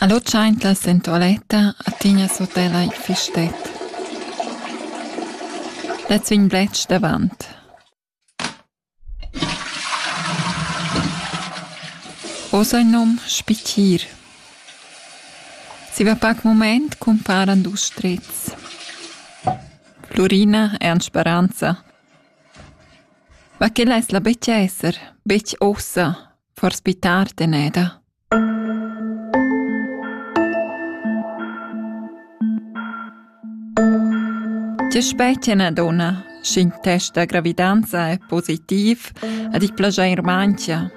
Allò tschaintlas in tualetta a tignas hotel ai Fistet. Lets vegn bletsch davant. Hoz ha il nom Spittir. Zieva pac mumaint cumparan dus strets. Flurina e Ans Speranza. Ma che less la betg esser, betg ussa, forsi tar teneda. Tge specie na donna, sch'in test da gravidanza è positiv ad ich plaschair manchia?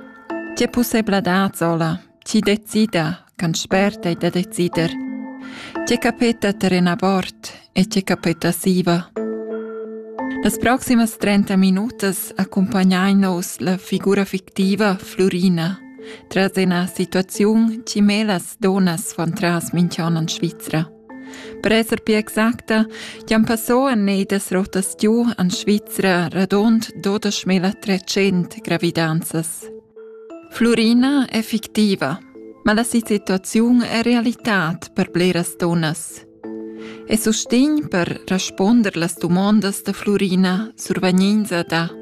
Tge pussebladad sola Ti decida, can spert ei da decider. Tge capeta terren abort e tge capeta siva. Las proximas 30 minutas accompagnein nos la figura fictiva Flurina tras ina situaziun che melas donas van tras minchon en Svizra. Per esser pia exacta, chi'm passò en nei das rotas giù en Svizra radund 12.300 gravidanzas. Flurina è fictiva, ma la situaziun è realitad per bleras dunnas. E sustegn per respunder las dumondas da Flurina survegninza da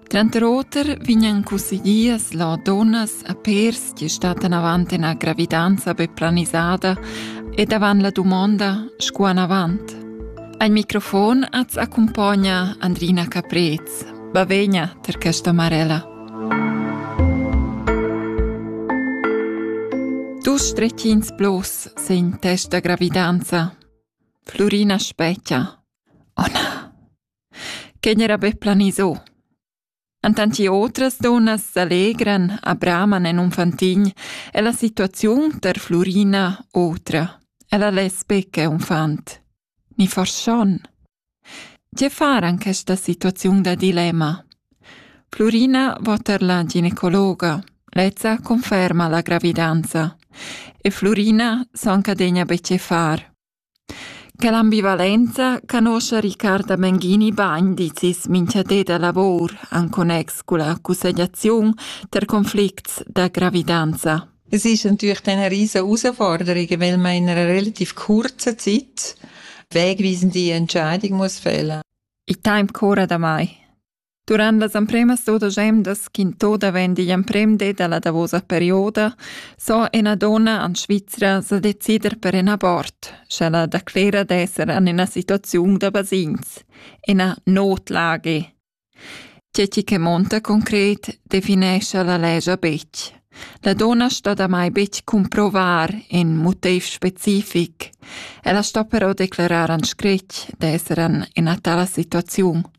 Tranter oter vegnan cussegliers là dunnas a pèrs che stattan avant ina gravidanza be planisada ed avant la dumonda sco anavant. Al microfon az accumpogna Andrina Caprez. Bavegna tar questa Marella. Dus stretchins plus sin testa gravidanza. Flurina Specchia. Ona. Quei era be planiso. Entant che otras dunnas s'allegran, abraman en un fantin, è la situaziun ter Flurina otra. Ella lesbeca unfant. Ni forschon. Tge far an questa situaziun da dilemma? Flurina va ter la ginecologa. Lezza conferma la gravidanza. E Flurina s'anca degna be ce far. Quella ambivalenza canoscha Riccarda Menghini bain, dizis mincha di da lavur in connex culla cussegliaziun per conflicts da gravidanza. Es ist natürlich dann eine riesen Herausforderung, weil man in einer relativ kurzen Zeit wegweisende Entscheidung muss fällen. Il temp cura damai? Durant las empremas dudesch emdas ch'intò davent digl emprem di dalla davosa perioda so ena donna an Svizra sa decider per in abort, sch'ella declera d'esser an ena situaziun da basegns, ena notlage. Tgi che monta concret definescha la legia betg. La donna sto damai betg cumprovar in motiv specific. Ella sto però declarar an scretg d'esser an ena tala situaziun.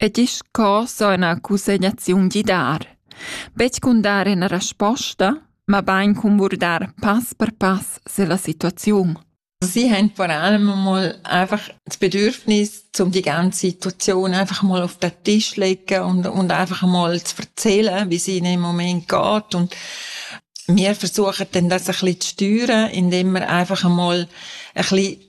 E disch co so ina cussegnaziun gidar. Betg cun dar ina resposta, mabain cun burdar pass per pass se la situaziun. Sie haben vor allem mal einfach das Bedürfnis, um die ganze Situation einfach mal auf den Tisch legen und, und einfach mal zu erzählen, wie es ihnen im Moment geht. Und wir versuchen dann das ein bisschen zu steuern, indem wir einfach einmal ein bisschen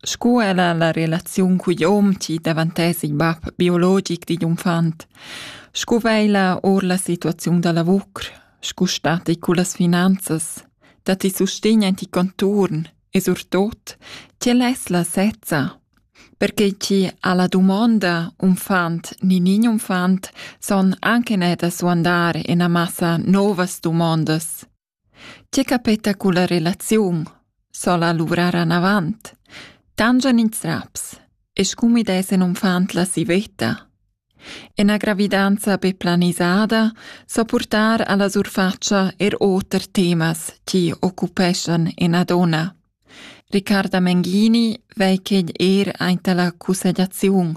Sco ella la relaziun cugl hom chi davantess il bap biologic digl unfant, sco veila our la situaziun da lavur, sco static cullas finanzas, dat ti sustegn aint il conturn e surtot ch'el es la sezza, perche chi alla dumonda unfant ni nin unfant son anche neir da suandar ina massa novas dumondas. Tge capeta culla relaziun? s'ho'la luvrar anavant. Tangian ins raps e scumid es in unfant la sivetta. Ina gravidanza be planisada so purtar alla surfatscha er oter temas chi occupeschan ina donna. Riccarda Menghini vei quegl er aint alla cussegliaziun.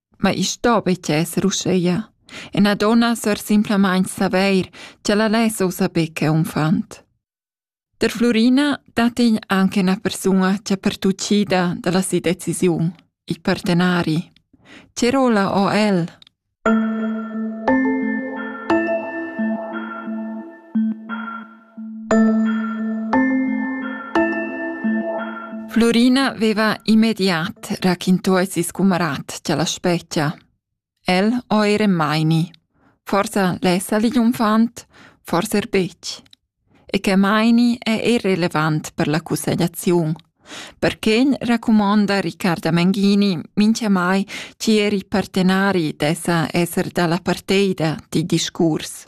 Ma i sto betg esser uscheia. Ena donna sör simplamaing savair ch'ella less ussa be che unfant. Der Flurina dat igl anc ena persuna ch'è pertuchida dalla si decisiun, i partenari. Che rola ò el? Flurina veva immediat raquintò a sis cumarat cha la spezia. El ho eir Hermione. Forsa lessa l'unfant, forsa er betg. E che Hermione è irrelevant per la cussegliaziun. Perché raccomonda Riccarda Menghini mincha mai chi eri partenari d'essa esser dalla parteida di discurs.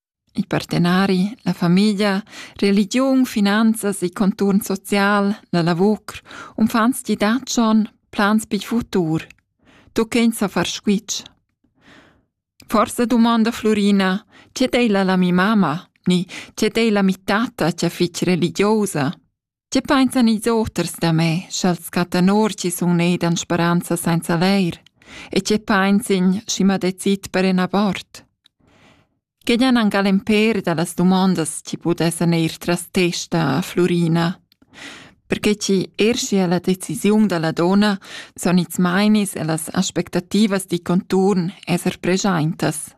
Il partenari, la famiglia, religiun, finanzas, il conturn social, la lavur, uffants ti dat schon plans pil futur. Tu ch'ins sa far squitsch. Forsa domanda Florina, che dei la la mi mama, ni che dei la mi tata, che fich religiosa? Ti pensan ils oters da me, sch'als cattan or chi sun nedan speranza sainza leir, e tge pensin, schi m'ha decis per in abort. Che jan angal in per da las dumondas chi pudessan eir tras testa a Flurina. Perché chi er schi a la decisiun da la donna son its mainis e las aspectativas di conturn esser preschaintas.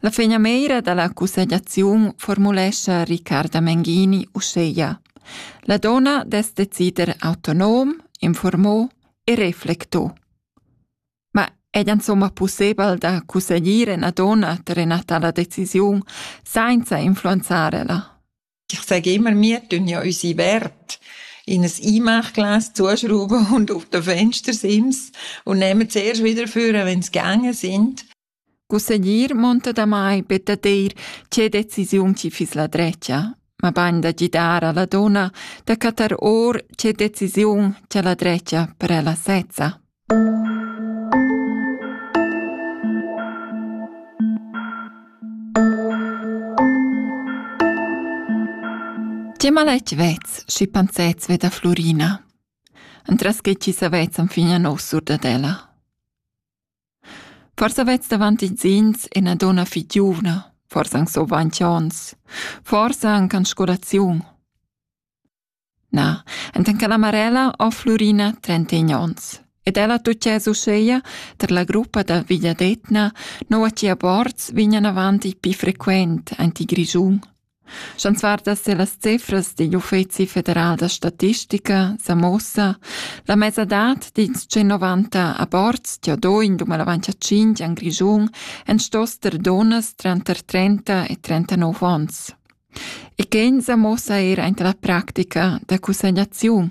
La finamira da la cussegliaziun formulescha Riccarda Menghini uscheia. La donna dess decider autonom, informò e reflectò. Ma è insomma pussebel da cussegliere una donna per una tale decisione senza influenzarela? Ich sage immer, wir tun ja unsere Werte in ein Einmachglas zuschrauben und auf den Fenster sind und nehmen zuerst wieder vor, wenn sie gegangen sind. Cussegnir monta damai be dad eir tge decisiun chi fiss la drecha, mabain da gidar a la donna da chattar or tge decisiun cha la drecha per ella sezza. Tge maletg vez, schi pensez ve da Florina? Entras che chi savezan fin a nos sur dad ella? Forsa vets davant insins ina donna fich giuvna, forsa anc survant ons, forsa anc an scolaziun. Na, enten che la Marella ho Flurina trentegn ons ed ella tutgess uscheia tar la gruppa da vegliadetgna, noua chia bords vignan avant il pi frequent aint il Grischun. Sch'ans vardas ir las cifras digl Uffezi federal da statistica sa muossa la mesadad dils 190 aborts che ho do in dumandavantia 5 en Grischun èn stos ter dunnas tranter 30 e 39 ons. E quei sa muossa er aint la practica da cussegnaziun.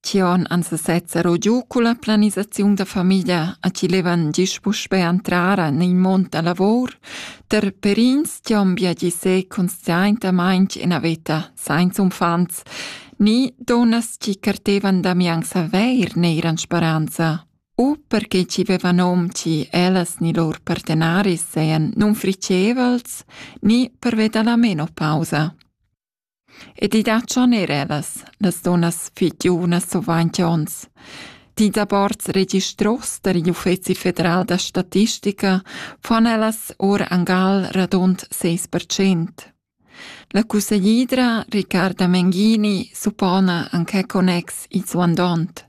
Tion ans sezza ro giù con la planisaziun da famiglia a chi levan gist puspè entrar in il mond da lavor, ter perins tiom viagi se conscientamaing in a veta sainza unfants, ni donas chi cartevan da mianza veir neir'an speranza, u perché chi vevan hom chi ellas ni lor partenaris sean non fricevals, ni per veda la meno pausa. Ed i dat schon erellas, las dunnas fitiunas survainti ons. Dis da bords registros der Uffezi federal da statistica fan ellas or angal radund seis per cent. La cusseglidra Riccarda Menghini suppona anche connex il suandont.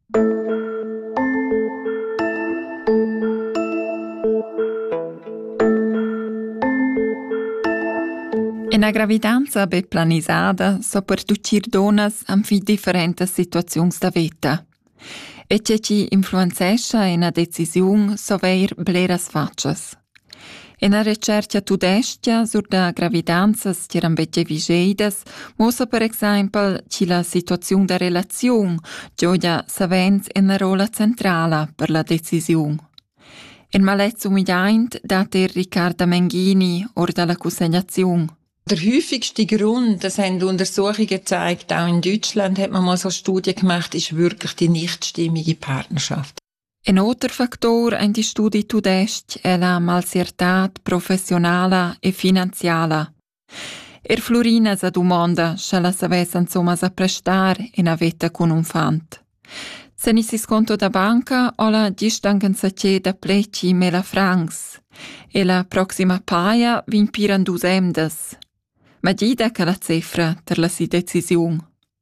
Ina gravidanza be planisada so per tuchir donas anfi differentas situaziuns da veta. E che ci influenzescha ina decisiun so veir bleras facas. Ina retschertga tudestga sur da gravidanzas tiran betg vigeidas muossa per exempel chi la situaziun da relaziun gioja savens ina rolla centrala per la decisiun. Il malets umidaint dat er Riccarda Menghini or dalla cussegnaziun. Der häufigste Grund, das haben Untersuchungen gezeigt, auch in Deutschland hat man mal so eine Studie gemacht, ist wirklich die nichtstimmige Partnerschaft. In oter factor ein die studi tudestg e la malsiertad professionala e finanziala. Er Flurina sa dumonda, sche la savess insomma sa prestar ina veta cun un fant. Senissis conto da banca ho la distangenza che da pleci mela francs e la proxima paia vegn piran dus emdas. Ma gida che la cefra ter la si decisiun.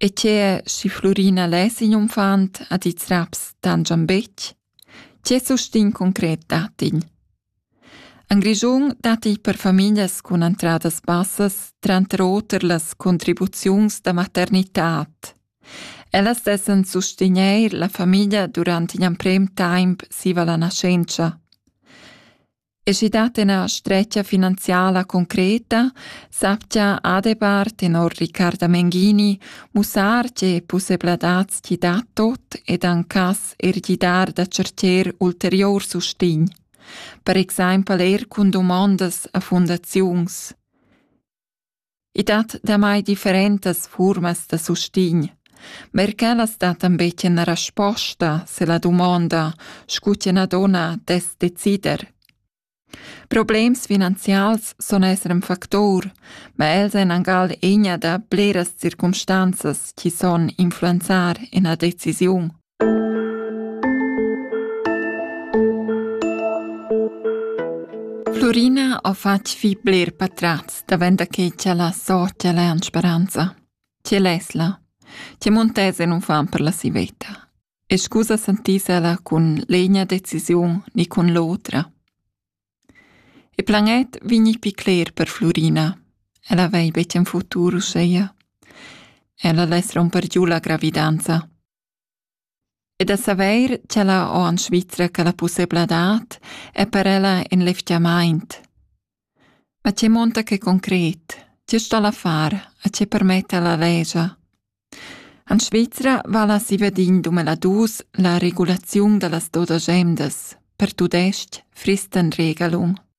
E tgea, schi Flurina less igl unfant ad ils raps tangian betg? Tge sustign concret dat igl? En Grischun datti per famiglias cun entradas bassas tranter oter las contribuziuns da maternitad. Ellas dessan sustegnair la famiglia durant in emprem temp siva la naschentscha. E schi dat ena stretgia finanziala concreta, saptia adebar tenor Riccarda Menghini mussar tge pussebladats ti dat tot ed ancas er gidar da certer ulterior sustign. Per exaimpel er cun domondas a fundaziuns. I dat damai differentas fuormas da sustign. Ma er quellas dattan be tschena rasposta se la dumonda, scu tschena donna dess decider. Problems finanzials sun esser ün factor, ma els èn angal egna da bleras circumstanzas chi son influenzar ina decisiun. Flurina ha fatg vi bler patratgs davent che cha la socia l'ha en speranza. Tge less la? Tge muntese nun fan per la sivetta? E scusa santisela cun l'egna decisiun ni cun l'otra. E planet vigni pi cler per Flurina. Ella vei betg en futur uscheia. Ella less romper giù la gravidanza. e da savair ch'ella ho in Svizra quella pussebladad è per ella in levgiamaint. Ma che monta che concret? Tge sta la far? A che permetta la legia? In Svizra vala sivadin dumeladus la regulaziun da las dodas emdas, per tudestg Fristenregelung.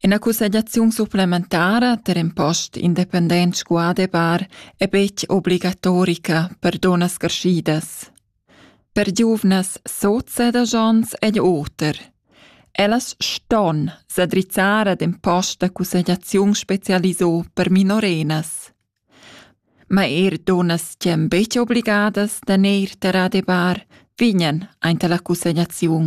Ina cussegliaziun supplementara ter in post independent sco adebar è betg obligatorica per dunnas carschidas. Per giuvnas soza da Jons egl oter. Ellas ston sa drizzar ad in post da cussegliaziun spezialiso per minorenas. Ma er dunnas ch'èn betg obligadas da neir ter adebar vegnan aint alla cussegliaziun.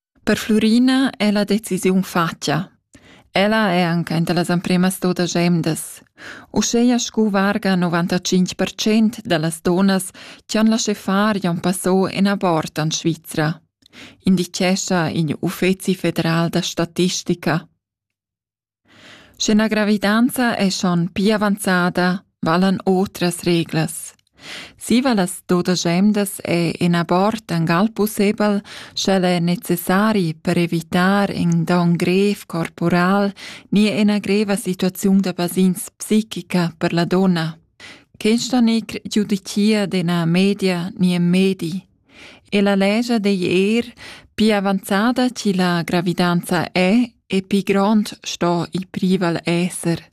Per Flurina è la decisiun fatga. Ella è anc enta las empremas dodas emdas. Uscheia scu varga 95 percent da las donas che han laschè far Jon Passot en abort en Svizra, indichescha igl Uffezi federal da statistica. Sch'üna gravidanza es schon pii avanzada, valan otras reglas. Zieva las dudesch emdas è ün abort angal pussebel, sch'el è necessari per evitar ün don grev corporal ni üna greva situaziun da basegns psichica per la donna. Questa n'he giudicà d'üna media ni ün medi. E la legia digl er pli avanzada chi la gravidanza è e pli grond sto il prival esser.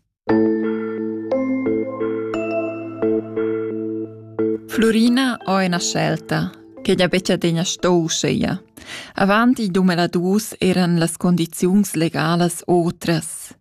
Florina ho una scelta, che gli becciadegna sto scegliere. Avanti dumeladus eran las condiziuns legalas otras.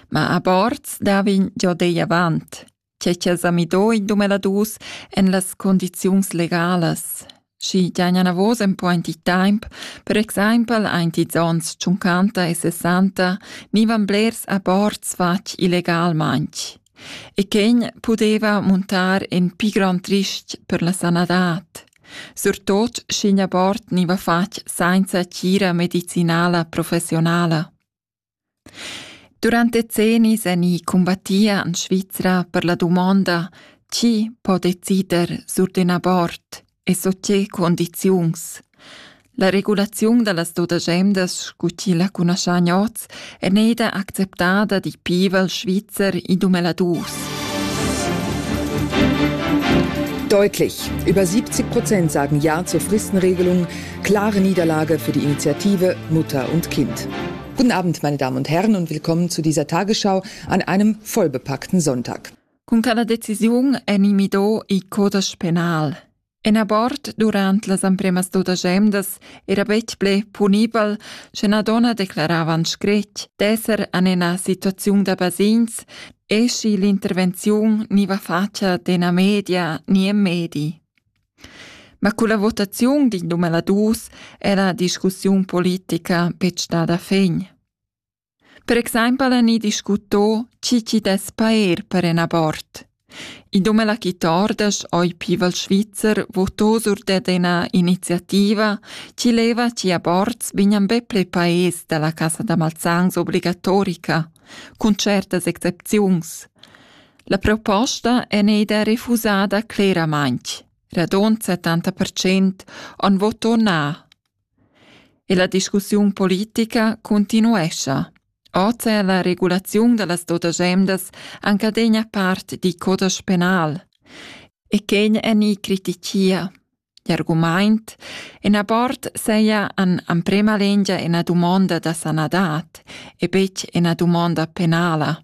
Ma a bords davin giò dei avant. che ch'el sa midò in dumeladus en las condiziuns legalas. Schi giagna navos en point di temp, per exaimpel aint ils ons 50 e 60, nivan blers aborts fatg illegalmaintg. E quegn pudeva montar en pi grand rist per la sanadad. Surtot sch'in abort niva fatg sainza tgira medicinala professionala. Durant decennis èni cumbattì en Svizra per la dumonda tgi po decider sur d'in abort e sut tge cundiziuns. La regulaziun da las dudesch emdas sco chi la cunaschain hoz è neida acceptada di pivel svizzer id um ella dus. Deutlich. Über 70 Prozent sagen Ja zur Fristenregelung. Klare Niederlage für die Initiative Mutter und Kind. Guten Abend, meine Damen und Herren, und willkommen zu dieser Tagesschau an einem vollbepackten Sonntag. Con cada decisiun è Nimido il codice penal. En abort durant las empremas duas emdas era betg ple punibel, sche una donna declarava en scret d'esser en una situazione da basins e schi l'intervenzione ni va facia d'una media ni en medi. Ma culla votaziun din dumeladus era discussiun politica betg stada fin. Per exaimpel ani discuto chi chi dess paer per in abort. I dumela chi tordas oi pival Schweizer votò sur ded ina iniziativa chi leva chi aborts vignan be ple paes dalla Casa da Malzans obligatorica, cun certas excepziuns. La proposta è neida refusada cleramaintg. Radont 70% han voto na. E la discussiun politica continuescha. Oz è la regulaziun da las dotagemdas anche degna part di codas penal. E quen è ni critichia. L'argument en abort seia an amprema lengia ena dumonda da sanadat e betg ena dumonda penala.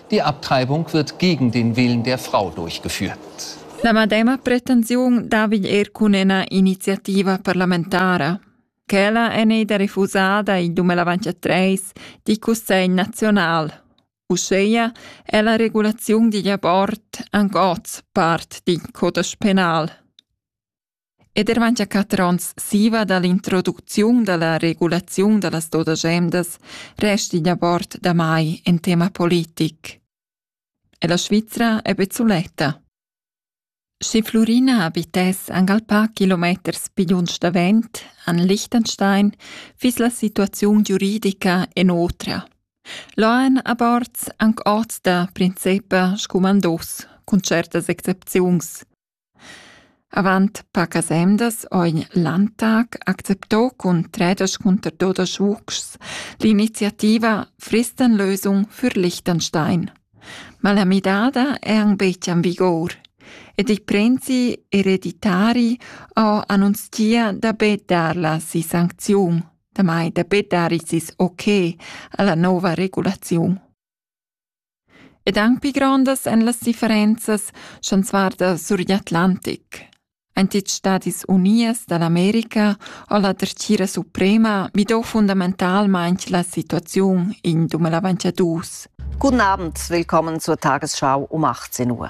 Die Abtreibung wird gegen den Willen der Frau durchgeführt. La medema pretensiun davigl er cun ena iniziativa parlamentara. Quella è neida refusada il 2023 di Cussegl nazional. Uscheia è la regulazione digl abort anc oz part di codas penal. ed er manchia quatter onns siva da l'introducziun da la regulaziun da las dodagemas restiglia bord damai in tema politic. E la Svizra è be suletta. Schi Flurina abitess angalpà kilometers pigliunsch davent an Liechtenstein fis la situaziun giuridica en otra. Loen a bords anc oz da principa scumandos cun certas excepziuns – Avant pacas emdas ho in Landtag accepto cun tredesch cunter dudesch vuschs l'iniziativa Fristenlösung für Liechtenstein. Ma la midada è anc betg en vigur ed i prenzi ereditari ho annunzia da be dar la si sancziun, damai da be dar sis ok a la nova regulaziun. Ed anc pli grondas èn las differenzas chanzunar da sur l'Atlantic. Ein tils Stadis Unies da l'America o la Dretgira Suprema midò fundamentalmaing la situaziun in 2022. Guten Abend, willkommen zur Tagesschau um 18 Uhr.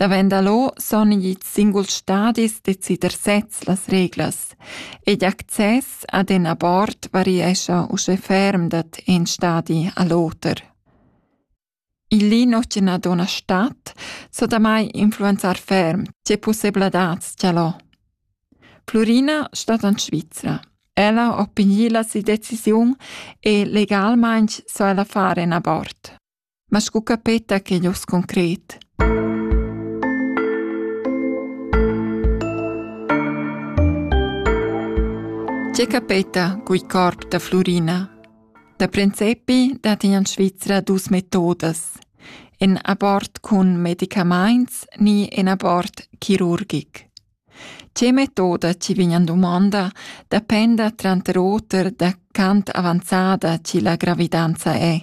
Davent da lo son ids singuls stadis decider sezs las reglas ed access ad in abort variescha uschè ferm dat in stadi a l'oter. Il lino che na dona stat so damai influenzar ferm tge possibladats cha l'ho. Flurina stat an Svizra. Ella opigli la si decisiun e legalmaing so ella fare in abort. Ma scu capeta quegl urs concret? Tge capeta cugl corp da Flurina? Da princepi dat in an Svizra dus metodas. En abort cun medicamaints ni en abort chirurgic. Tge metoda ci vign an domanda dependa tranter oter da quant avanzada ci la gravidanza è.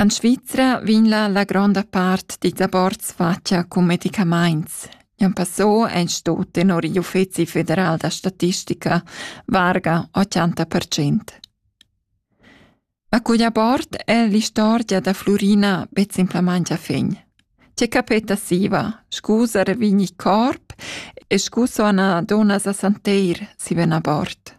En Svizra vegn la, la gronda part dils aborts fatga cun medicamaints. Jan Passot ein sto tenor igl Uffeci federal da statistica varga 80 percent. Ma cugl abort è l'istorgia da Flurina bezimplamangia fegn. C'è capeta siva, scusa revigni corp e scuso ana donas a santeir si ven abort.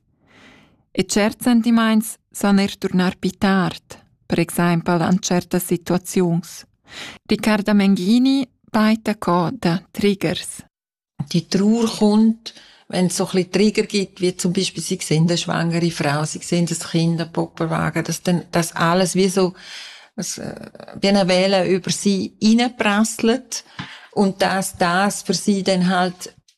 E certs sentimaints san eir turnar pü tard, per exaimpel an tschertas situaziuns. Riccarda Menghini peita co da Triggers. Die Trauer kommt, wenn es so ein bisschen Trigger gibt, wie zum Beispiel, sie sehen eine schwangere Frau, sie sehen das Kind, einen Puppenwagen, dass dann das alles wie so, wie eine Welle über sie hineinprasselt und dass das für sie dann halt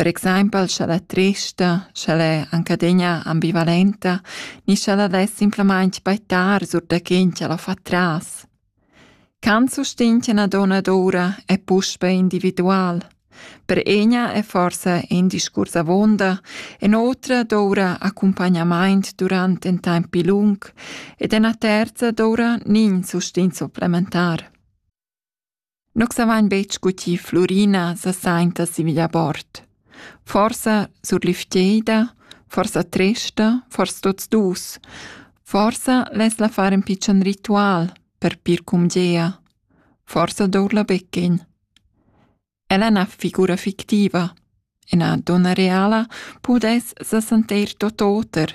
Per exaimpel scha'l è trista, sch'el è anc adegna ambivalenta ni sch'el al es simplamaing baitar sur da quint ch'el ho fat tras. Kant sustegn che 'na donna d'oura è puspe individual. Per egna è forsa in discurs avonda e n'otra d'oura accumpagnamaint durant ün temp pi lung ed üna terza d'oura nin sustegn supplementar. Nus avain betg scuttì Flurina sasainta sin via bord. Forsa surlifteida, forsa tresta, forsa tuts dus. Forsa less la far ün pitschen ritual per pir cumgea. Forsa dour la beckin. Ella na figura fictiva. Ina donna reala pudess sa sentir tot oter.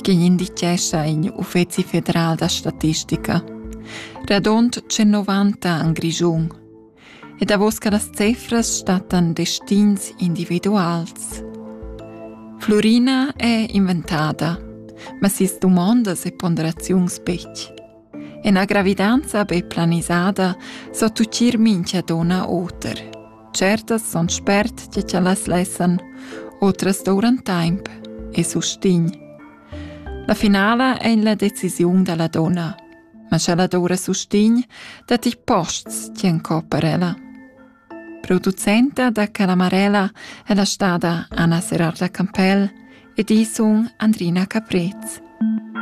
che indicescha in uffeci federal da statistica. Radond 190 en Grischun. E davos che las cifras stattan destins individuals. Florina è inventada, ma sis dumondas e ponderaziuns betg. Ena gravidanza be planisada so tucir mincha donna oter. Certas son spert tge cha las lessan, otras douran taimp e sustign. La finala è la decisiun da la donna, ma scha la doura sustign, dat i posts ti en coparella. Producenta da Calamarella è la stada Anna Serarda Campell ed isun Andrina Caprez.